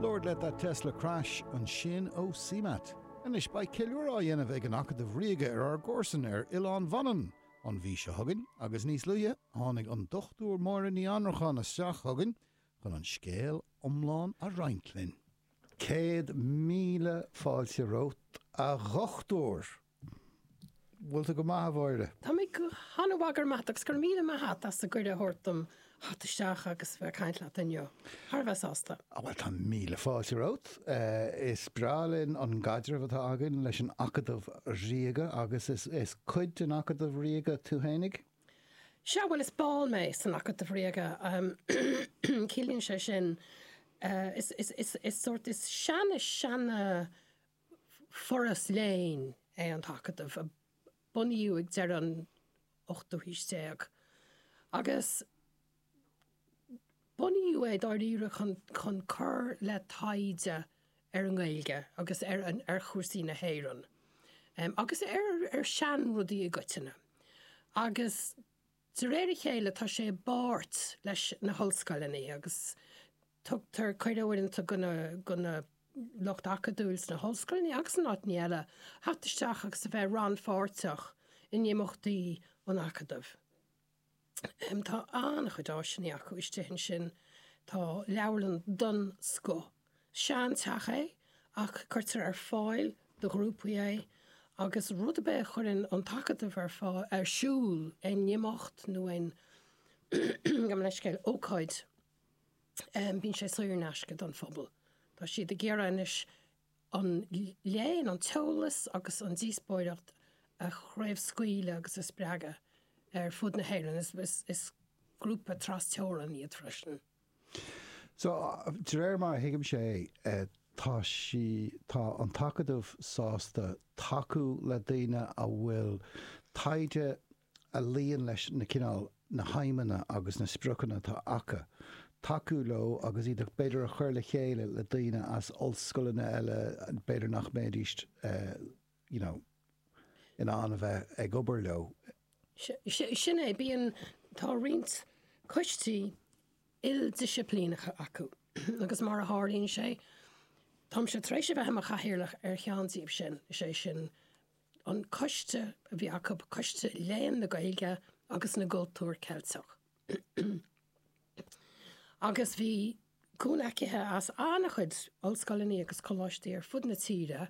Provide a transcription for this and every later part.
Lord Let That Tesla Crash ansin ó CMAT. Anois beidh ceiliúradh á dhéanamh ag an Acadamh Ríoga ar ár gcomharsan ar Oileán Mhanann an mhí seo chugainn agus níos luaithe tháinig an Dr Máire Ní Annracháin isteach chugainn chun an scéal iomlán a roinnt linn. Céad míle fáilte romhat, a dhochtúir! Bhfuil tú go maith, a Mháire? Tá mé go han-mhaith, go raibh maith agat, agus go raibh míle maith a't as an gcuireadh a thabhairt dom theacht isteach agus bheith ag caint leat inniu. Thar a bheith sásta. Á, bhuel, tá míle fáilte romhat. Is breá linn an gcaidreamh atá againn leis an Acadamh Ríoga, agus is cuid den Acadamh Ríoga tú fhéinig? Sea, bhuel, is ball mé san Acadamh Ríoga. Ciallaíonn sé sin, is, is, is, is sórt, is seana, seana, Foras léinn é an tAcadamh a bunaíodh ag deireadh an ochtú haois déag agus bunaíodh é dáiríre chun cur le taighde ar an nGaeilge agus ar chúrsaí na hÉireann agus ar seanrudaí i gcoitinne. De réir a chéile tá sé i bpáirt leis na hollscoileanna agus tugtar cuireadh uaireanta do, do na lucht acadúil sna hollscoileanna agus in áiteanna eile a theacht isteach agus a bheith rannpháirteach in imeachtaí an Acadaimh. Tá an-chuid áiseanna acu istigh ansin, tá leabharlann den scoth, sean teach é ach cuirtear ar fáil do ghrúpaí é agus rud ar bith a chuireann an tAcadamh ar fáil, ar siúl, aon imeacht nó aon, gabh mo leithscéal, ócáid, bíonn sé saor in aisce don phobal. Tá siad ag iarraidh anois an léann, an t-eolas agus an díospóireacht a chraobhscaoileadh agus a spreagadh ar fud na hÉireann. Is grúpa tras-teorann iad freisin. So, de réir mar a thuigim sé, tá sí, tá an tAcadamh sásta tacú le daoine a bhfuil taighde a luíonn leis na cineál, na haidhmeanna agus na spriocanna atá acu, tacú leo agus iad b'fhéidir a chur le chéile le daoine as ollscoileanna eile b'fhéidir nach mbéidís eh, you know, in ann a bheith ag obair leo. Sin é, bíonn, tá roinnt coistí ildisciplíneacha acu agus mar a tharlaíonn sé, táimse tar éis a bheith i mo chathaoirleach ar cheann díobh sin, is é sin an coiste a bhí acu, Coiste Léann na Gaeilge agus na gCultúr Ceilteach. agus bhí cúnamh acu as an-chuid ollscoileanna agus coláistí ar fud na tíre,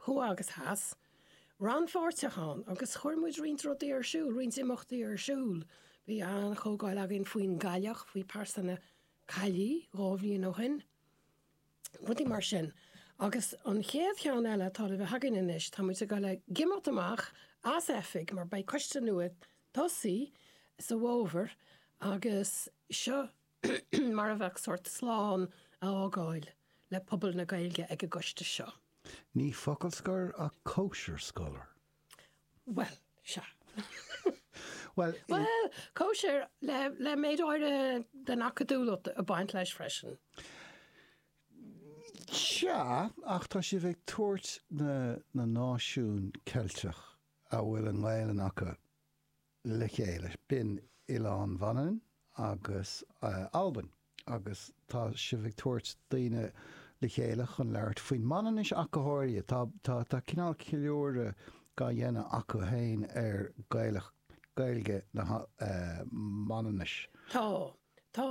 thuaidh agus theas, rannpháirteach ann agus chuir muid roinnt rudaí ar siúl, roinnt imeachtaí ar siúl. Bhí an-chomhdháil againn faoin gcailleach, faoi pearsa na caillí, dhá bhliain ó shin. rudaí mar sin. Agus an chéad cheann eile atá le bheith againn anois, tá muid ag dul ag imeacht amach as oifig mar beidh coiste nua ag tosaí sa bhfómhar agus seo mar a bheadh sórt slán a fhágáil le pobal na Gaeilge ag an gcoiste seo. Ní focal scoir ach cóisir scoir. Bhuel, sea. Bhuel, i. Bhuel, cóisir le, le méid áirithe den acadúlacht ag baint leis freisin. Sea, ach tá sibh ag tabhairt na, na náisiún Ceilteach a bhfuil an Ghaelainn acu. le chéile. B'in Oileán Mhanainn agus Albain agus tá sibh ag tabhairt daoine le chéile chun labhairt faoin Manainnis ach go háirithe. Tá cineál ceiliúradh dá dhéanamh acu féin ar Ghaeilge na Manainnise. Tá, tá.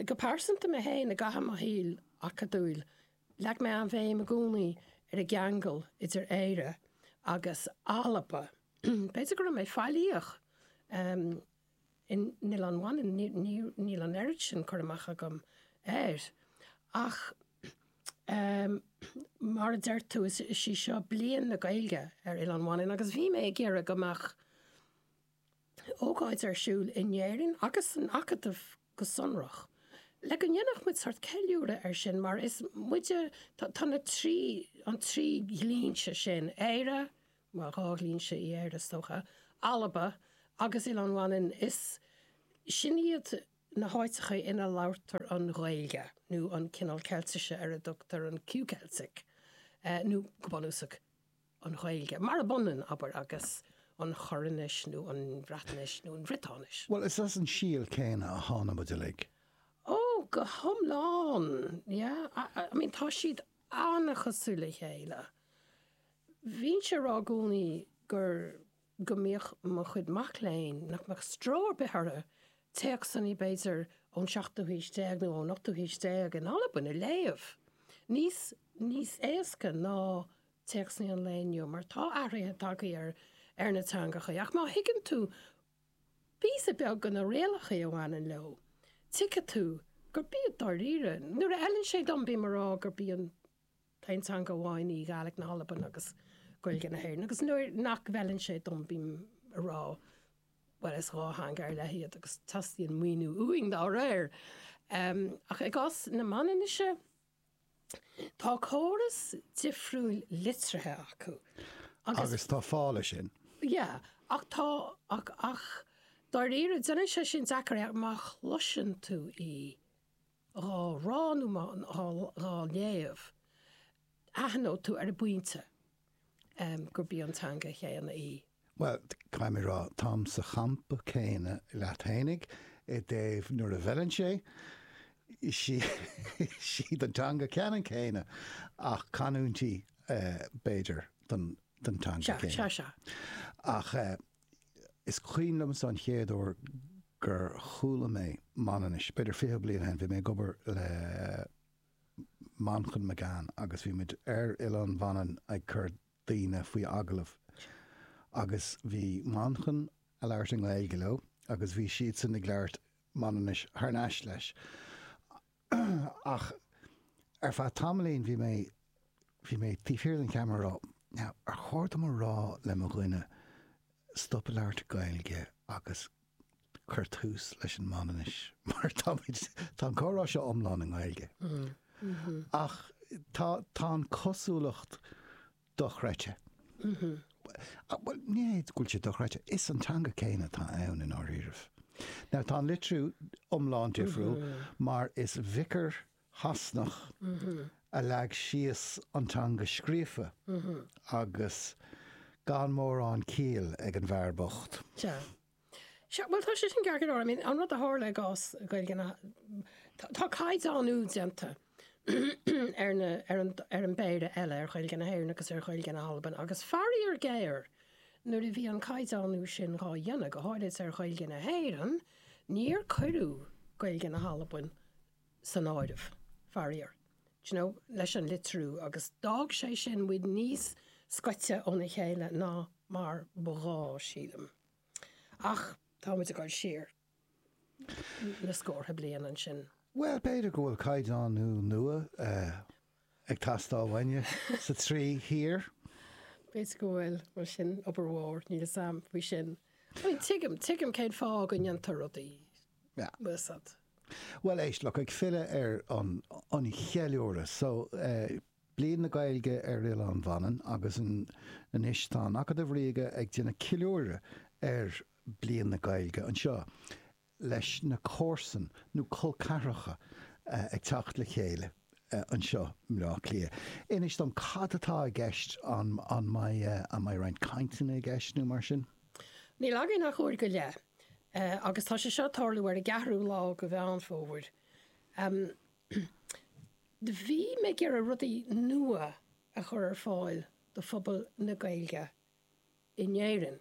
Go pearsanta mé féin, i gcaitheamh mo shaoil acadúil, Leag mé an bhéim i gcónaí ar an gceangal idir Éire agus Alba. B'fhéidir go raibh mé faillíoch in Oileán Mhanann, níl an oiread sin cur amach agam air, ach mar a deir tú, is í seo Bliain na Gaeilge ar Oileán Mhanann agus bhí mé ag iarraidh go mbeadh, ócáid ar siúl in Éirinn agus san Acadamh go sonrach, le go ndéanfadh muid sórt ceiliúradh air sin mar is muide, tá na trí, an trí dhlínse sin, Éire, bhuel dhá dhlínse in Éire is dócha, Alba agus Oileán Mhanainn, is, sin iad na háiteacha ina labhartar an Ghaeilge nó an cineál Ceiltise ar a dtugtar an Q-Cheiltis, nó go bunúsach. an Ghaeilge, murab ionann, abair, agus an Choirnis nó an Bhreatnais nó an Bhriotáinis. Bhuel, is as an síol céanna a tháinig muid uilig. Ó, go hiomlán. Yeah. I mean, tá siad an-chosúil le chéile. Bhínnse a' rá i gcónaí gur, go mbíodh mo chuid mac léinn, nach mbeadh stró ar bith orthu téacsanna, b'fhéidir, ón seachtú haois déag nó ón ochtú haois déag in Albain a léamh, níos, níos éasca ná, téacsanna an lae inniu mar tá athruithe tagtha ar na teangacha ach má thuigeann tú píosa beag de na rialacha a bhaineann leo, tuigfidh tú gurb í dáiríre. Nuair a fheileann sé dom, bím ag rá gurb í an t-aon teanga amháin í Gaidhlic na hAlban agus Gaeilge na hÉireann agus nuair nach bhfeileann sé dom, bím ag rá, bhuel, is dhá theanga ar leith iad agus teastaíonn maoiniú uainn dá réir. Ach i gcás na Manainnise, Tá córas difriúil litrithe acu agus. Agus tá fáth leis sin. Yeah, ach tá, ach, ach dáiríre, déanann sé sin deacair í má chloiseann tú í dhá rá nó má, dhá, dhá léamh, aithneoidh tú ar an bpointe. gurb í an teanga chéanna í. Bhuel, caithfidh mé a rá, táim sa champa céanna leat fhéinig i dtaobh nuair a bhfeileann sé, sí an teanga ceanann céanna ach canúintí b'fhéidir den teanga céanna. Ach is cuimhin liomsa an chéad uair gur chuala mé Manainnis, b'fhéidir fiche bliain ó shin, bhí mé ag obair le, Manchán Magan agus bhí muid ar Oileán Mhanann ag cur daoine faoi agallamh agus bhí Manchán a' labhairt i nGaeilge leo agus bhí siadsan ag labhairt Manainnis thar n-ais leis ach ar feadh tamaillín bhí mé, bhí mé taobh thiar den cheamara ag rá now ar chóir dom a rá le mo dhuine stop a labhairt Gaeilge agus cuir tús leis an Manainnis, mar tá muid, tá an comhrá seo iomlán i nGaeilge, ach tá, tá an cosúlacht dochreidte, bhuel, ní hé go bhfuil sé dochreidte, is an teanga céanna atá ann i ndáiríre. Now, tá an litriú iomlán difriúil, mar is viocáire Sasanach a leag síos an teanga scríofa agus gan mórán ciall ag an bhfear bocht. Sea. Sea, bhuel, tá sé sin ceart go leor. I mean, an rud a tharla i gcás Gaeilge na, tá caighdeánú déanta ar na, ar an, ar an bpéire eile, ar Ghaeilge na hÉireann agus ar Ghaeilge na hAlban agus faraor géar nuair a bhí an caighdeánú sin dhá dhéanamh, go háirid ar Ghaeilge na hÉireann, níor cuireadh Gaeilge na hAlban san áireamh, faraor, you know leis an litriú agus d'fhág sé sin muid níos scoite óna chéile ná mar ba ghá, sílim. Ach tá muid ag dul siar na scórtha bliain ansin. Bhuel, b'fhéidir go bhfuil caighdeánú nua. ag teastáil uainne sna trí thír. B'fhéidir go bhfuil, mar sin, obair mhór, níl 'fhios a'm faoi sin. Bhuel, tuigim, tuigim cén fáth go ndéantar rudaí, bhfuil 'fhios a'd. Bhuel, éist, look, ag filleadh ar an, an cheiliúradh, so, eh, Bliain na Gaeilge ar Oileán Mhanann agus an, anois tá an Acadamh Ríoga ag déanamh ceiliúradh ar Bliain na Gaeilge anseo. leis na comharsan nó col ceathracha ag teacht le chéile anseo i mBleá Cliath. Inis dom cad atá i gceist, an mbeidh roinnt cainteanna i gceist nó mar sin? Níl againn ach uair go leith agus tá sé seo ag tarlú ar an gceathrú lá de Mheán Fómhair. Bhí mé ag iarraidh rudaí nua a chur ar fáil do phobal na Gaeilge in Éirinn.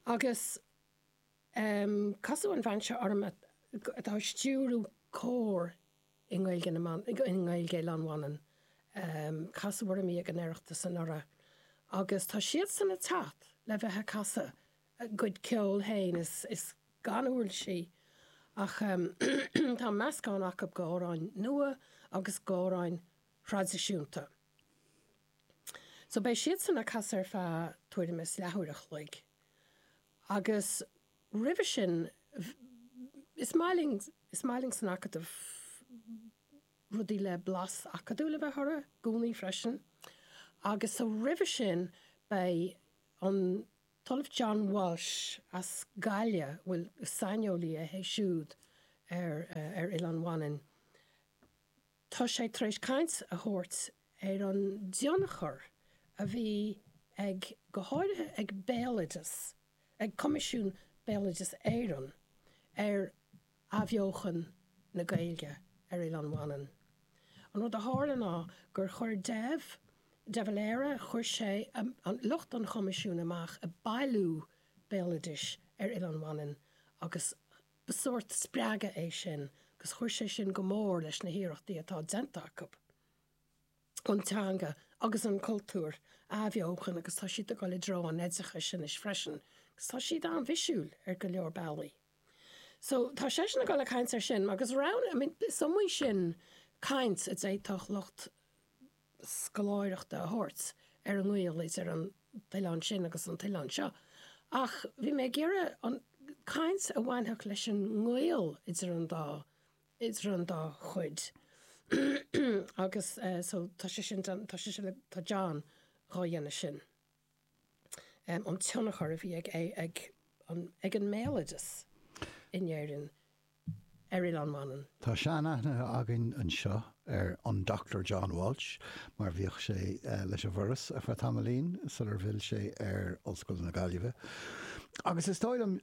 Agus casadh an bhean seo orm atá ag stiúradh cór i nGaeilge Oileán Mhanann, casadh orm í ag an Oireachtas anuraidh, agus tá siadsan ag teacht le bheith ag casadh a gcuid ceoil féin, is a gcuid uirlisí ach tá meascán acu d'amhráin nua agus d'amhráin thraidisiúnta. So beidh siadsan a' casadh ar feadh tuairim is leathuair a' chloig agus roimhe sin is maith linn, is maith linn san Acadamh rudaí le blas acadúil a bheith orthu i gcónaí freisin agus so roimhe sin beidh an tOllamh John Walsh as Gaillimh, bhuel is saineolaí é siúd ar Oileán Mhanann, Tá sé tar éis caint a thabhairt ar an dtionchar a bhí ag, go háirithe ag Béaloideas, ag Coimisiún Béaloideas Éireann, ar athbheochan na Gaeilge ar Oileán Mhanann. An rud a tharla ná gur chuir Dev, De Valera, chuir sé lucht an Choimisiúin amach ag bailiú béaloidis ar Oileán Mhanann agus Ba sórt spreagadh é sin agus chuir sé sin go mór leis na hiarrachtaí atá déanta acu an teanga agus an cultúr a athbheochan agus tá siad ag dul i dtreo an oideachais anois freisin agus tá siad an-fhísiúil ar go leor bealaí. So, tá seisean ag dul ag caint air sin agus roghanna, I mean, is iomaí sin caint a d'fhéadfadh lucht scoláireachta a thabhairt ar an ngaol idir an t-oileán sin agus an t-oileán seo, ach bhí mé ag iarraidh caint a bhainfeadh leis an ngaol idir an dá idir an dá chuid agus so tá sé sin tá sé sin tá John dhá dhéanamh sin. an tionchar a bhí ag an mbéaloideas in Éirinn ar Oileán Mhanann. Tá seanaithne againn anseo ar an Dochtúir John Walsh mar bhíodh sé leis an bhForas ar feadh tamaillín sular fhill sé ar Ollscoil na Gaillimhe agus is dóigh liom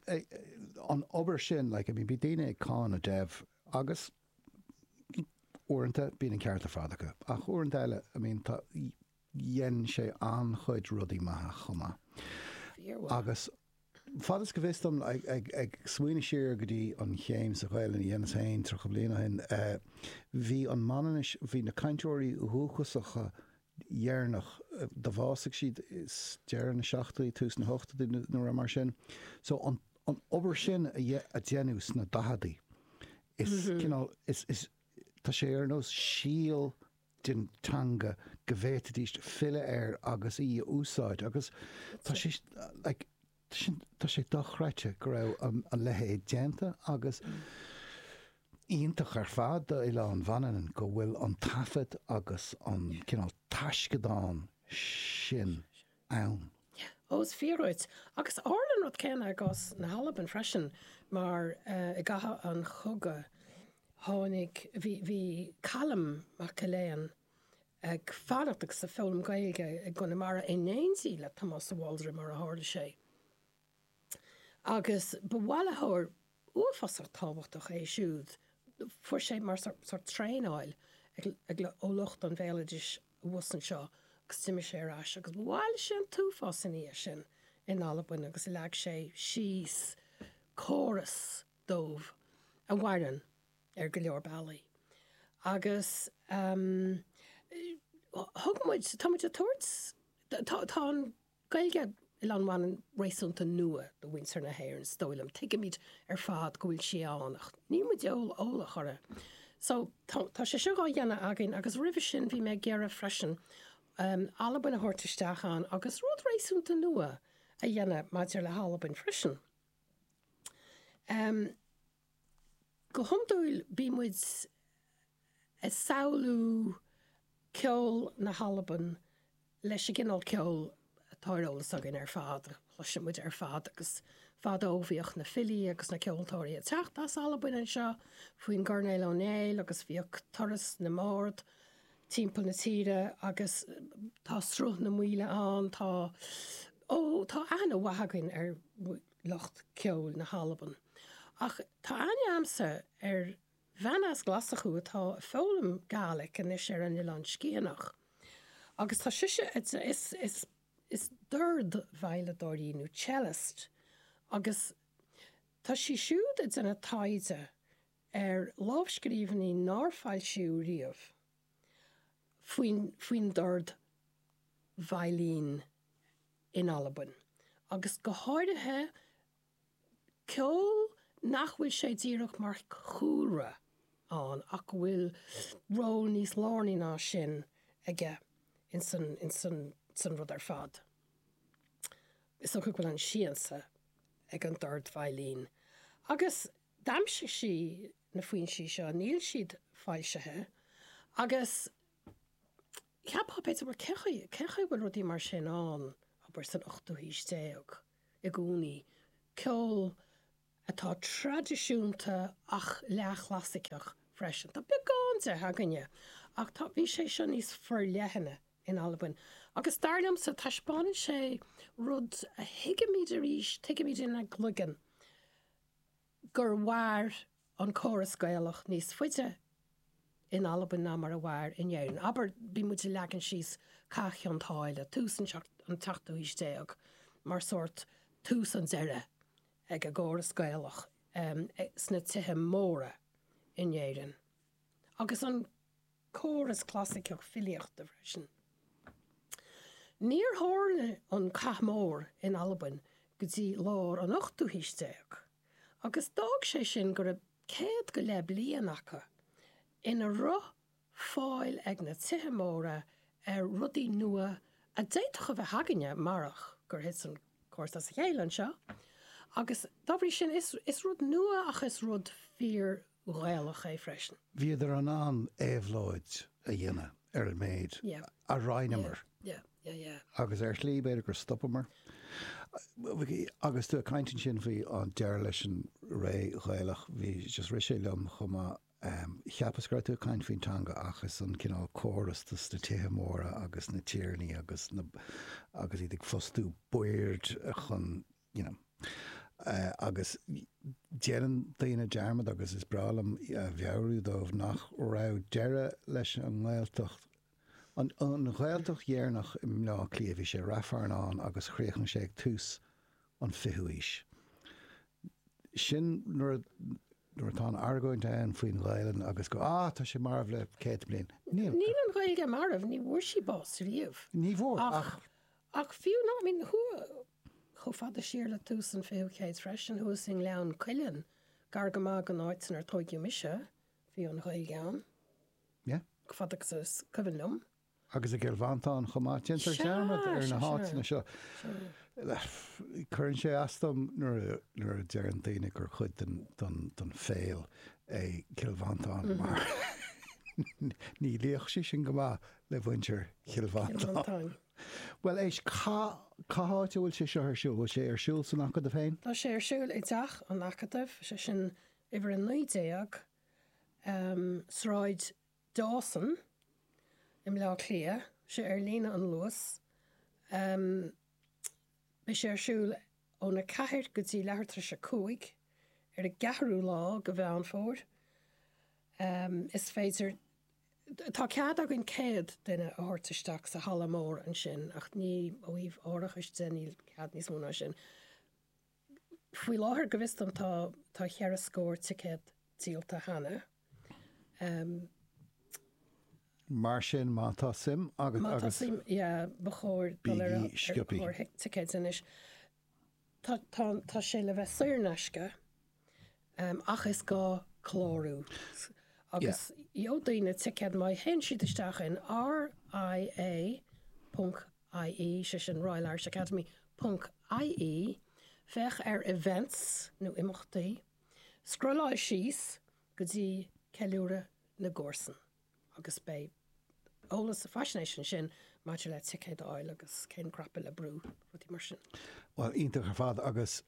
an obair sin like bhí daoine ag cáineadh Dev agus uaireanta bíonn an ceart ar fad acu ach uaireanta eile I mean tá dhein sé an-chuid rudaí maithe chomh maith. Agus fad is fios dom, ag smaoineamh siar go dtí an chéim sa Ghaelainn a dheineas féin tríocha bliain ó shin, bhí an Mhanainnis, bhí na cainteoirí dhúchasacha dheireanach, do bhásaigh siad i deireadh na seachtóidí, tús na hochtóidí, nó uair mar sin. So, an obair sin a deineadh sna daicheadaí, is cineál, is, tá sé ar nós síol den teanga go bhféadfaidís filleadh air agus í a úsáid agus tá sé like tá sin tá sé dochreidte go raibh an a leithéid déanta agus iontach ar fad d'Oileán Mhanann go bhfuil an taifead agus an cineál taisceadán sin ann. Ó, is fíor dhuit. Agus tharla an rud céanna i gcás na hAlban freisin, mar i gcaitheamh an chogaidh tháinig, bhí, bhí Calum Maclean ag fanacht agus ag foghlaim Gaeilge i gConamara in éindí le Tomás de Bhaldraithe, mar a tharla sé. agus ba bhailitheoir uafásach tábhachtach é siúd, fuair sé mar sórt traenáil ó lucht an bhéaloidis abhus anseo agus d'imigh sé ar ais agus bhailigh sé an t-uafás ina dhiaidh sin in Albain agus leag sé síos córas dóibh a mhaireann ar go leor bealaí. Agus thug muid, tá muid ag tabhairt, tá an. Ghaeilge Oileán Mhanann réasúnta nua do mhuintir na hÉireann is dóigh liom. Tuigimid ar fad go bhfuil sí ann ach níl muid eolach uirthi. So, tá sé seo dhá dhéanamh againn agus roimhe sin bhí mé ag iarraidh freisin Albain a thabhairt isteach ann agus rud réasúnta nua a dhéanamh maidir le hAlbain freisin. Go hiondúil bíonn muid ag samhlú ceol na hAlban leis an gcineál ceoil atá ar eolas againn ar fad, a chloiseann muid ar fad, agus fadó bhíodh na filí agus na ceoltóirí ag teacht as Albain anseo faoin gCoirnéal Ó Néill agus bhíodh turas na mbard timpeall na tíre agus tá Sruth na Maoile ann, tá, ó, tá aithne mhaith againn ar. lucht ceoil na hAlban. Ach tá aithne a'msa ar bhean as Glaschú atá a' foghlaim Gaeilge anois ar an Oileán Sgitheanach agus tá sise ag déanamh, is, is, is dordveidhleadóir í nó cellist agus tá sí siúd a' déanamh taighde ar lámhscríbhinní nár foilsíodh riamh faoin faoin dordveidhil in Albain, agus go háirithe ceol nach bhfuil sé díreach mar chúlra ann ach go bhfuil ról níos lárnaí ná sin aige ins an ins an ins an rud ar fad. Is dócha go bhfuil an siansa ag an dordveidhil. Agus. d'aimsigh sí na foinsí seo, níl siad foilsithe, agus cheapfá, b'fhéidir, bhuel, cé chaoi, cé chaoi a bhfuil rudaí mar sin ann, abair, san ochtú haois déag i gcónaí, ceol atá traidisiúnta ach leath-chlasaiceach freisin. Tá beagán de againne, ach tá, bhí sé seo níos forleithne in Albain, agus dar liomsa, taispeánann sé rud a thuigimid arís, tuigimid inár gcloigeann, gur mhair an córas Gaelach níos faide in Albain ná mar a mhair in Éirinn. Abair, bíonn muid ag leagan síos Cath Chionn tSáile, tús an tseachtú haois déag, mar sórt tús an deiridh ag an gcóras Gaelach sna tithe móra in Éirinn. agus an córas clasaiceach filíochta freisin. Níor tharla an cath mór in Albain go dtí lár an ochtú haois déag, agus d'fhág sé sin go raibh céad go leith bliain acu ina raibh fáil ag na tithe móra ar rudaí nua a d'fhéadfadh a bheith againne marach gur thit an córas as a chéile anseo, agus dá bhrí sin is rud nua ach is rud fíor Ghaelach é freisin. Bhíodar in ann éabhlóid a dhéanamh ar an méid a roinneamar agus ar shlí b'fhéidir gur stopamar. Agus tú ag caint ansin faoi an deireadh leis an ré Ghaelach, just rith sé liom chomh maith, cheapas go raibh tú ag caint faoin teanga ach is an cineál córas, sna tithe móra agus na tiarnaí agus iad ag fostú baird chun you know. Agus déanann daoine dearmad, agus is breá liom a mheabhrú dóibh, nach raibh deireadh leis an nGaeltacht, an Ghaeltacht dheireanach i mBleá Cliath, bhí sé i Ráth Fearnáin agus chríochnaigh sé ag tús an 20ú haois. Sin nuair a, nuair atá an argóint ann faoin nGaelainn agus go, ah, tá sé marbh le céadta bliain. Níl. Níl an Ghaeilge marbh, ní bhfuair sí bás riamh. Ní bhfuair, ach. Ach fiú ná, I mean, chomh fada siar le tús an 20ú céad freisin, thuas i nGleann Cuilinn, gar go maith don áit inar tóigeadh mise, bhí an Ghaeilge ann, chomh fada agus is cuimhin liom. Agus i gCill Mhantáin chomh maith. Déantar dearmad ar na háiteanna seo. Cuireann sé as dom nuair a deireann daoine gur cuid den Pháil é Cill Mhantáin mar ní luífeadh sé sin go maith le muintir Chill Mhantáin. Bhuel, éist, cá, cá háit a bhfuil sé seo ar siúl? Bhfuil sé ar siúl san Acadamh féin? Tá sé ar siúl i dTeach an Acadaimh, sé sin uimhir a naoi déag, ehm, Sráid Dawson i mBleá Cliath, sé ar líne an Luas, ehm, beidh sé ar siúl ón a ceathair go dtí leathuair tar éis a cúig ar an gceathrú lá de Mheán Fómhair, ehm, is féidir, Tá cead againn céad duine a thabhairt isteach sa halla mór ansin ach ní, ó thaobh árachais de, níl cead níos mó ná sin. Faoi láthair, go bhfios dom, tá, tá cheithre scór ticéad díolta cheana. Mar sin, má tá suim agat agus. Má tá suim, yeah, ba chóir dul ar an, ar an chlár ticéid anois. tá, tá, tá sé le bheith saor in aisce ach is gá clárú agus gheobhaidh daoine ticéad má théann siad isteach in RIA ponc IE, sé sin Royal Irish Academy ponc IE, féach ar Events nó Imeachtaí, scrolláil síos go dtí Ceiliúradh na gComharsan. agus beidh eolas agus faisnéis ansin maidir le ticéid a fháil agus cén cnaipe le brú, rudaí mar sin. Bhuel, iontach ar fad agus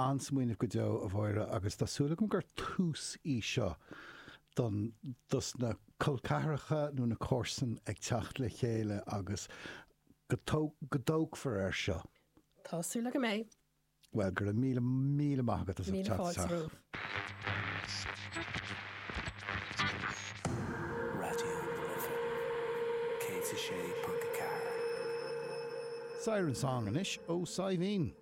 an-smaoineamh go deo, a Mháire, agus tá súil agam gur tús í seo don, dos na col ceathracha nó na comharsain ag teacht le chéile agus go dtógfar air seo. Tá súil agam go mbeidh. Bhuel, go raibh míle, míle maith agat as ucht teacht isteach. Siren Song anois ó Saidhbhín.